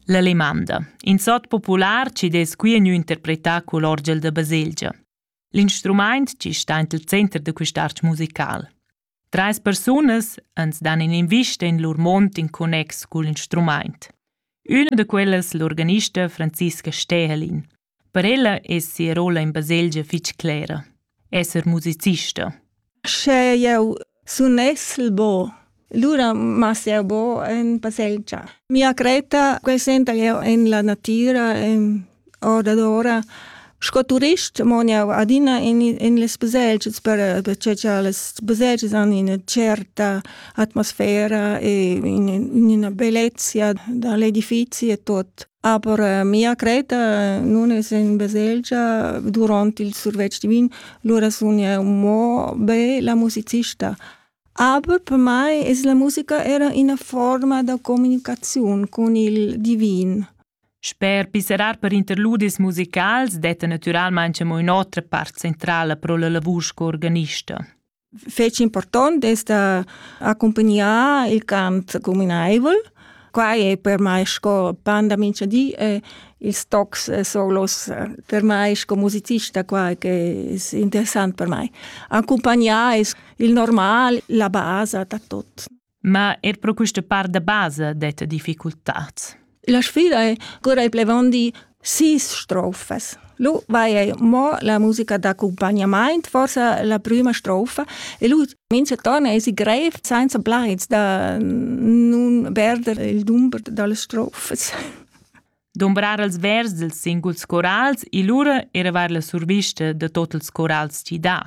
La lemanda. In sot popular ci dess qui gnü interpretà cul orgel da baselgia. L'instrumaint ci sta int il center da quist'arch musical. Treis persunas ans dan in'invista in lur mond in connex cul instrumaint. Üna da quellas l'organista Franziska Stehelin. Per ella es sia rolla in baselgia fich clera, esser musicista. Sche eu sunessel bo, lura mas eu bo in baselgia. Mia cretta quesenta eu in la natira, in ora d'ora. Sco turist mon eu adina in, in les baselgias per, perché cha les baselgias han ina certa atmosfera e in, in una bellezia da l'edifizi e tot. Aber äh, mia creta nun es in baselgia durant il survetsch divin, lura sun eu mo be la musicista. Aber per mai es la musica era ina forma da comunicaziun con il divin. Sper piserar per interludis musicals detta naturalmain mo ün'otra part centrala pro la lavur sco organista. fetg important d'ester accompagnar il cant communaivel. Quai è per mai sco pan da mincha di e ils tocs solos per mai sco musicista qua che è interessant per mai. Accompagnare è il normal, la basa da tot. Ma er pro quista part da basa detta difficultats. La sfida è cura i plevandi sis strofas. Lu vai ei mo la musica d'accompagnament, forse la prima strofa, e lui mince torna e si greif senza blaids da nun perder il dumber delle strofes. dumbrar els vers dils singuls corals e lura eravar la survista da tot ils corals chi dà.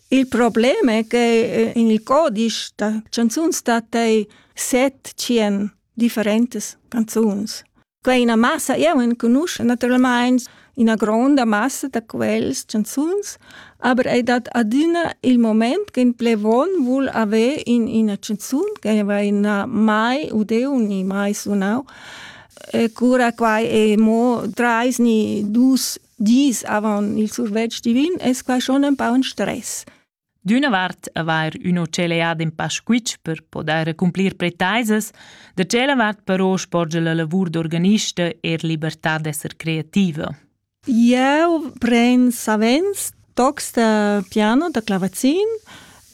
Il problem è che eh, in il codice da canzuns stat ei set cien differentes canzuns. Quei ina massa, io enconosco naturalmente una gronda massa da quels canzuns, aber è dat adina il moment che in plevon vuol avere in una canzun che va in mai udeu ni mai sunau E cura quai è mo trais ni dus dis avant il survetsch divin, es quai schon ein pa un stress. D'una vart avair üno celead in pa squitsch per podair cumplir pretaisas, da tschella vart però sporge la lavur d'organista er libertà d'esser creativa. Eu pren savens tocs da piano, da clavazin.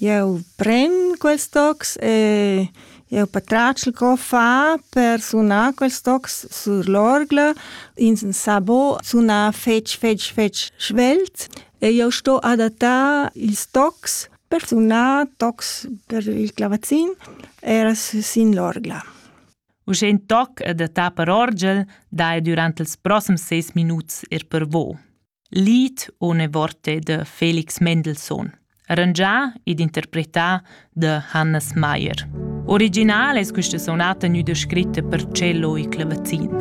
Eu pren quels tocs e eu patratgel co far per sunar quels tocs sur l'orgla. In sabo suna fetg, fetg, fetg svelt e eu sto adattar ils tocs per sunar tocs per il clavazin, era sin l'orgla. Uschè in toc e da ta per orgel dai durant ils proxims seis minuts er per vo. Lied Ohne Worte de Felix Mendelssohn, arrangià ed interpretà da Hannes Meyer. Original es questa sonata gnüda scritta per cello e clavazin.